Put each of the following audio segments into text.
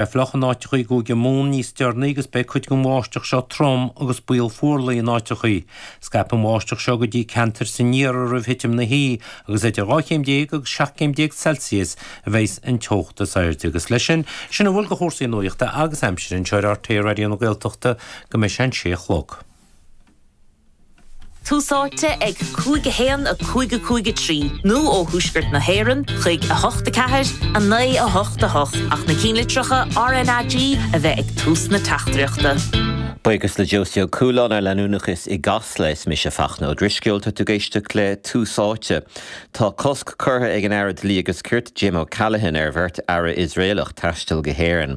Beidh sé fliuch in áiteachaí i gCúige Mumhan níos deireanaí agus beidh cuid den bháisteach seo trom agus baol fuarlaigh in áiteachaí. Scaipfidh an bháisteach seo go dtí ceantair san iarthar roimh thitim na hoíche agus idir 12 chéim agus 17 céim Celsius a bheidhs an teocht is airde. Agus leis sin, sin a bhfuil de chúrsaí nuachta agus aimsire anseo ar RTÉ Raidió na Gaeltachta go mbeidh sé an sé a chlog. Tús áite ag 5 1 5 5 3 nó ó thuaisceart na hÉireann chuig 8 4 9 8 8 ach na cinnlitreacha RNAG a bheith ag tús na teachtaireachta. Buíochas le Josie Ó Cualáin ar leanúnachas i gCasla. Is mise Fachtna Ó Drisceoil. Tá tú ag éisteacht le Tús Áite. Tá cosc curtha ag an Aire Dlí agus Cirt, Jim O'Callaghan, ar bheirt Aire Iosraelach taisteal go hÉireann.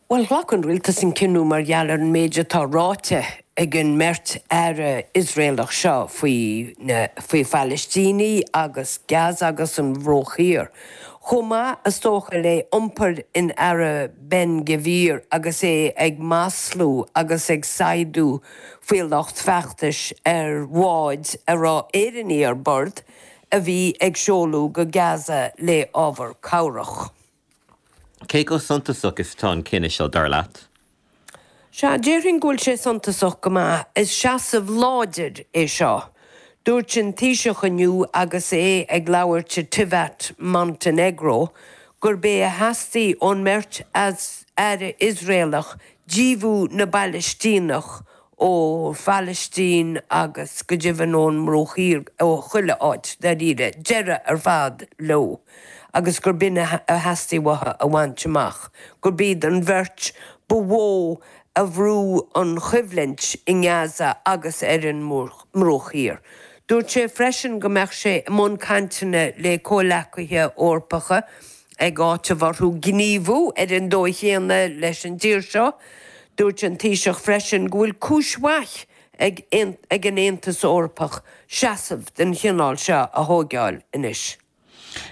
Bhuel, ghlac an rialtas an cinneadh mar gheall ar an méid atá ráite ag an mbeirt aire Iosraelach seo faoi na, faoi Phalaistínigh agus Gaza agus an Bruach Thiar. Chomh maith, is dócha, le iompar an Aire Ben Gvir agus é ag maslú agus ag saighdeadh faoi lucht feachtais ar bháid a raibh Éireannaigh ar bord a bhí ag seoladh go Gaza le ábhar cabhrach. Cé chomh suntasach is atá an cinneadh seo, dar leat? Sea, déarfainn go bhfuil sé suntasach go maith. Is seasamh láidir é seo. Dúirt an Taoiseach inniu agus é ag labhairt i Tivat, Montainéagró, gurb é a theastaigh ón mbeirt Aire Iosraelach díothú na bPalaistíneach ó Phalaistín agus go deimhin ón mBruach Thiar, ó chuile áit, dáiríre, deireadh ar fad leo agus gurb in a theastaigh uathu a bhaint amach, gurb iad an bheirt ba mhó a bhrú an choimhlint i nGaza agus ar an mBruach Thiar. Dúirt sé freisin go mbeadh sé i mbun cainteanna le comhleacaithe Eorpacha Ag áiteamh orthu gníomhú ar an dóigh chéanna leis an dtír seo, dúirt an Taoiseach freisin go bhfuil cúis mhaith ag an Aontas Eorpach seasamh den chineál seo a thóigeáil anois.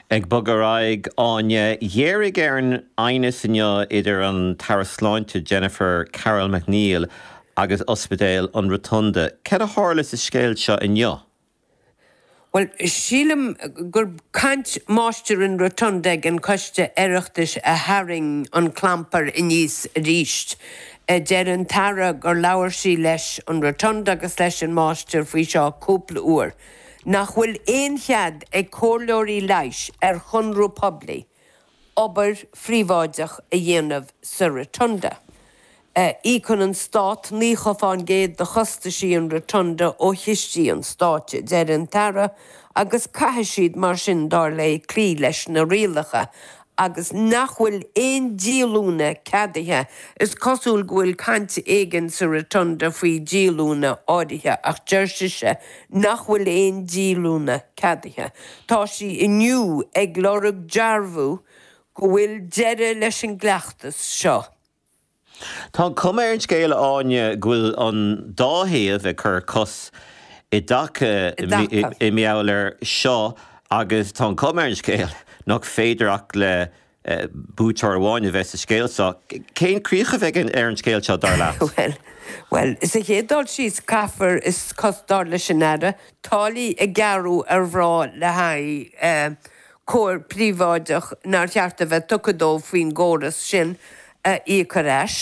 Ag bogadh ar aghaidh, Áine, ghéaraigh ar an aighneas inniu idir an tAire Sláinte Jennifer Carroll MacNeill agus Ospidéal an Rotunda. Cad a tharla sa scéal seo inniu? Bhuel, sílim gurb caint Máistir an Rotunda ag an Coiste Oireachtais a tharraing an clampar aníos arís. Deir an tAire gur labhair sí leis an Rotunda agus leis an Máistir faoi seo cúpla uair. Nach bhfuil aon chead ag comhairleoirí leighis ar chonradh poiblí obair phríobháideach a dhéanamh sa Rotunda. Íocann an Stát 90 faoin gcéad de chostaisí an Rotunda ó chistí an Stáit, a deir an tAire, agus caithfidh siad mar sin, dar léi, cloí leis na rialacha agus nach bhfuil aon díolúine ceadaithe. Is cosúil go bhfuil caint éigin sa Rotunda faoi dhíolúine áirithe ach deir sise nach bhfuil aon díolúine ceadaithe. Tá sí inniu ag lorg dearbhú go bhfuil deireadh leis an gcleachtas seo. Tá an chuma ar an scéal, a Áine, go bhfuil an dá thaobh ag cur cos i dtaca i ngeall air seo agus tá an chuma ar an scéal nach féidir ach le buaiteoir amháin a bheith sa scéal seo. Cén críoch a bheidh ar an scéal seo, dar leat? Bhuel, bhuel, sa chéad dul síos, caithfear, is cos, dar leis an Aire, táillí a ghearradh ar mhná le haghaidh cúram príobháideach nár cheart a bheith tugtha dóibh faoin gcóras sin, íoc ar ais.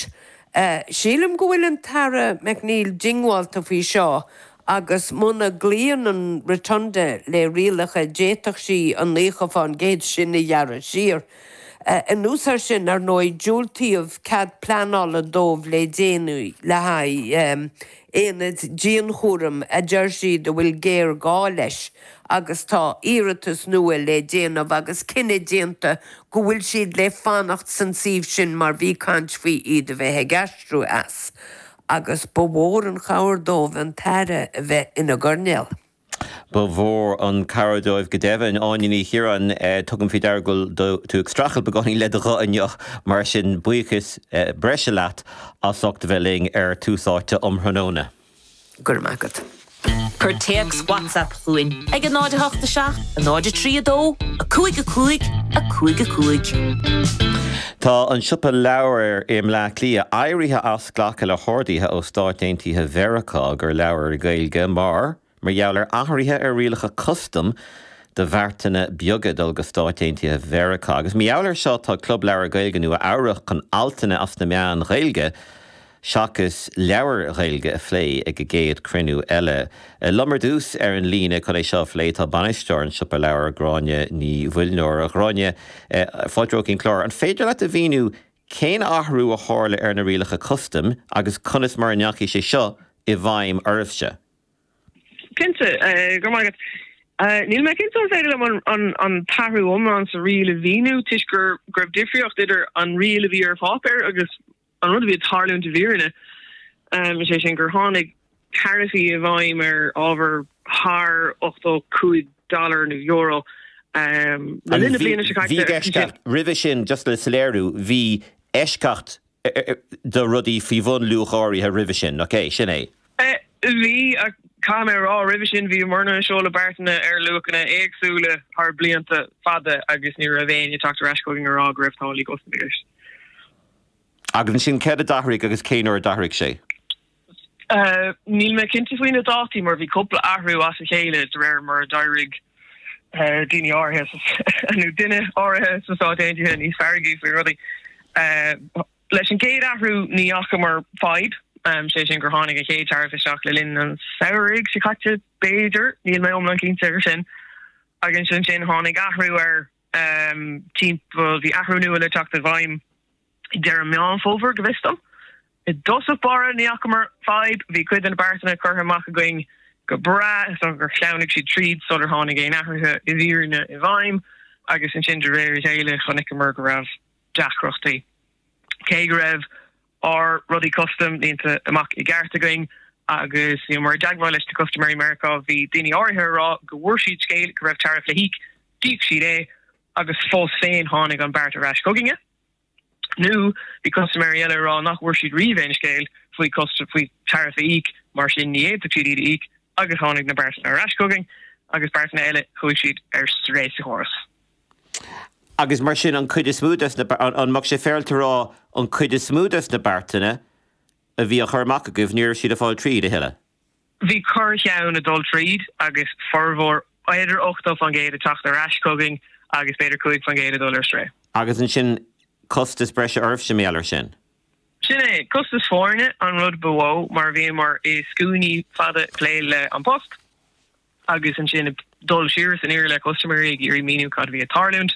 Sílim go bhfuil an tAire McNeill diongbháilte faoi seo agus muna gcloíonn an Rotunda le rialacha d'fhéadfadh sí an nócha fán gcéad sin a ghearradh siar. Anuas air sin, ar ndóigh, diúltaíodh cead pleanála dóibh le déanaí le haghaidh aonad dianchúraim a deir siad a bhfuil géarghá leis agus tá iarratas nua le déanamh agus cinneadh déanta go bhfuil siad le fanacht san suíomh sin mar bhí caint faoi iad a bheith ag aistriú as agus ba mhór an chabhair dóibh an tAire a bheith ina gcoirnéal. Ba mhór an chabhair dóibh go deimhin. Áine Ní Chiaráin, tugaim faoi deara go bhfuil tú ag streachailt beagáinín le do ghuth inniu, mar sin buíochas breise leat as ucht a bheith linn ar Tús Áite um thráthnóna. Go raibh maith agat. Cuir téacs WhatsApp chugainn ag 0 8 7 0 3 2 5 5 5 5. Tá an Siopa Leabhar i mBleá Cliath éirithe as glacadh le horduithe ó Stáit Aontaithe Mheiriceá do leabhair Gaeilge mar mar gheall ar athruithe ar rialacha custaim do bheartanna beaga dul go Stáit Aontaithe Mheiriceá. Agus mar gheall ar seo tá Club Leabhar Gaeilge Nua Eabhrac chun altanna as na meáin Ghaeilge seachas leabhair Ghaeilge a phlé ag a gcéad chruinniú eile. Liom ar dtús ar an líne chun é seo a phlé tá bainisteoir An Siopa Leabhar, Gráinne Ní Mhuilneoir. A Ghráinne, fáilte romhat chuig an gclár, an féidir leat a mhíniú cén athrú a tharla ar na rialacha custaim agus conas mar a ndeachaigh sé seo i bhfeidhm oraibhse? Cinnte, go raibh maith agat. Níl mé cinnte an féidir liom an t-athrú iomlán sa riail a mhíniú toisc go raibh difríocht idir an riail a bhí ar pháipéar agus An rud a bhí ag tarlúint i bhfírinne, is é sin gur tháinig taraifí i bhfeidhm ar ábhar thar 85 dollar nó euro le linn na bliana seo caite. Bhí eisceacht roimhe sin, just le soiléiriú, bhí eisceacht do rudaí faoi bhun luach áirithe roimhe sin, ok? Sin é. Bhí, ach caithfidh mé a rá, roimhe sin bhí muidne ag seoladh beartanna ar luachanna éagsúla thar blianta fada agus ní raibh éinne ag teacht ar ais chugainn á rá go raibh táillí custam i gceist. Agus ansin, céard a d'athraigh agus cén uair a d'athraigh sé? Níl mé cinnte faoi na dátaí mar bhí cúpla athrú as a chéile de réir mar a d'éirigh daoine áirithe, nó duine áirithe, sna Stáit Aontaithe níos feargaí faoi rudaí. Leis an gcéad athrú ní fhacamar fadhb, sé sin gur tháinig an chéad taraif isteach le linn an tsamhraidh seo caite b'fhéidir, níl mé iomlán cinnte air sin. Agus ansin tháinig athrú ar. um timpeall, bhí athrú nua le teacht i bhfeidhm ag deireadh Meán Fómhair, go bhfios dom. I dtosach báire, ní fhacamar fadhb, bhí cuid de na beartanna curtha amach againn go breá, so gur shleamhnaigh siad tríd sular tháinig aon athruithe i bhfírinne i bhfeidhm, agus ansin de réir a chéile chonaiceamar go raibh deacrachtaí, cé go raibh. ár rudaí custam líonta amach i gceart againn agus bhíomar i dteagmháil leis na custaiméirí Meiriceá bhí daoine áirithe á rá go bhfuair siad scéal go raibh tariff le híoc, d'íoc siad é agus fós féin tháinig an beart ar ais chugainne. Nó bhí custaiméirí eile á rá nach bhfuair siad riamh aon scéal faoi faoi tariff a íoc mar sin ní fhéadfadh siad iad a íoc agus tháinig na beartanna ar ais chugainn agus beartanna eile chuaigh siad ar strae sa chóras. agus mar sin, an cuid is mó des na, an mbeadh sé féarailte a rá an cuid is mó des na beartanna a bhí á chur amach agaibh, ní raibh siad ag fáil tríd a thuilleadh? Bhí corr-cheann ag dul tríd agus formhór, b'fhéidir 80 faoin gcéad, ag teacht ar ais chugainn agus b'fhéidir 5 faoin gcéad ag dul ar strae. Agus ansin costas breise oraibhse mar gheall ar sin? Sin é, costas foirne an rud ba mhó mar bhíomar i scuainí fada ag plé le An Post. agus ansin ag dul siar is aniar le custaiméirí ag iarraidh míniú cad a bhí ag tarlúint.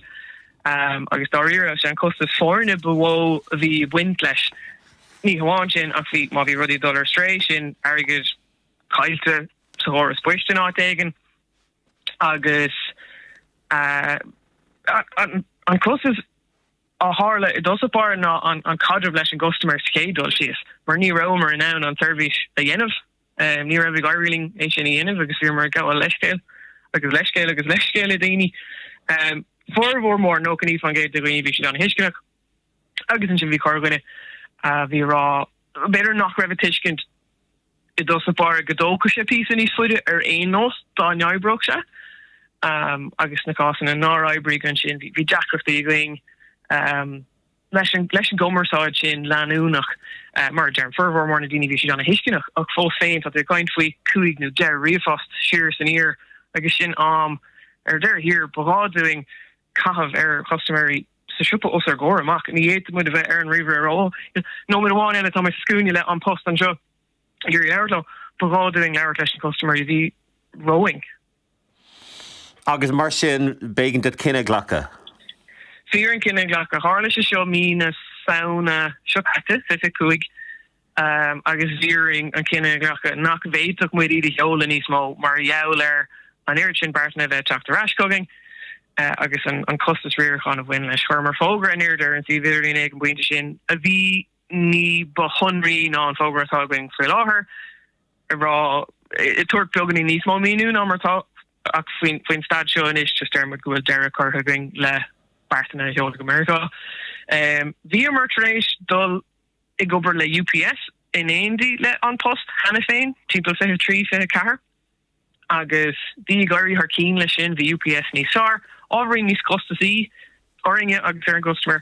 Agus dáiríre, sé an costas foirne ba mhó a bhí ag baint leis. Ní hamháin sin ach bhí, má bhí rudaí ag dul ar strae, sin airgead caillte sa chóras poist in áit éigin agus an costas a tharla i dtosach báire ná an caidreamh leis an gcustaiméir sa chéad dul síos mar ní rabhamar in ann an tseirbhís a dhéanamh. Ní raibh ag éirí linn é sin a dhéanamh agus bhíomar ag gabháil leithscéil agus leithscéil agus leithscéil le daoine. Formhór mór, 99% de dhaoine, bhí siad an-thuisceanach agus ansin bhí corrdhuine a bhí ag rá b'fhéidir nach raibh ag tuiscint i dtosach báire go dtógfadh sé píosa níos faide ar aon nós dá n-oibreodh sé agus sna cásanna nár oibrigh ansin bhí deacrachtaí againn. Leis an gcumarsáid sin leanúnach, mar a deirim, formhór mór na ndaoine bhí siad an-tuisceanach, ach fós féin tá tú ag caint faoi chúig nó deich ríomhphost siar is aniar agus sin am ar deireadh thiar ba ghá dúinn a chaitheamh ar chustaiméirí sa siopa os ár gcomhair amach. Ní fhéadfadh muid a bheith ar an ríomhaire ar aon nóiméad amháin eile, tá mé sa scuaine le An Post anseo. iarraidh labhairt leo. Ba ghá dúinn labhairt leis na custaiméirí a bhí romhainn. Agus mar sin, b'éigean daoibh cinneadh a ghlacadh. Bhí orainn cinneadh a ghlacadh. Tharla sé seo mí na Samhna seo caite, fiche a cúig, agus bhí orainn an cinneadh a ghlacadh nach bhféadfadh muid iad a sheoladh níos mó mar gheall ar an oiread sin beartanna a bheith ag teacht ar ais chugainn agus an costas riaracháin a bhain leis. Chuireamar fógra in airde ar an suíomh idirlín ag an bpointe sin a bhí ní ba shonraithe ná an fógra atá againn faoi láthair ar ag tabhairt beagáinín níos mó míniú ná mar atá ach faoin staid seo anois, deir muid go bhfuil deireadh curtha againn le beartanna a sheoladh go Meiriceá. Bhíomar tar éis dul ag obair le UPS in éindí le An Post cheana féin, timpeall 23, 24, agus bhí ag éirí thar cinn leis sin, bhí UPS níos fearr, ábhairín níos costasaí orainne agus ar an gcustaiméir.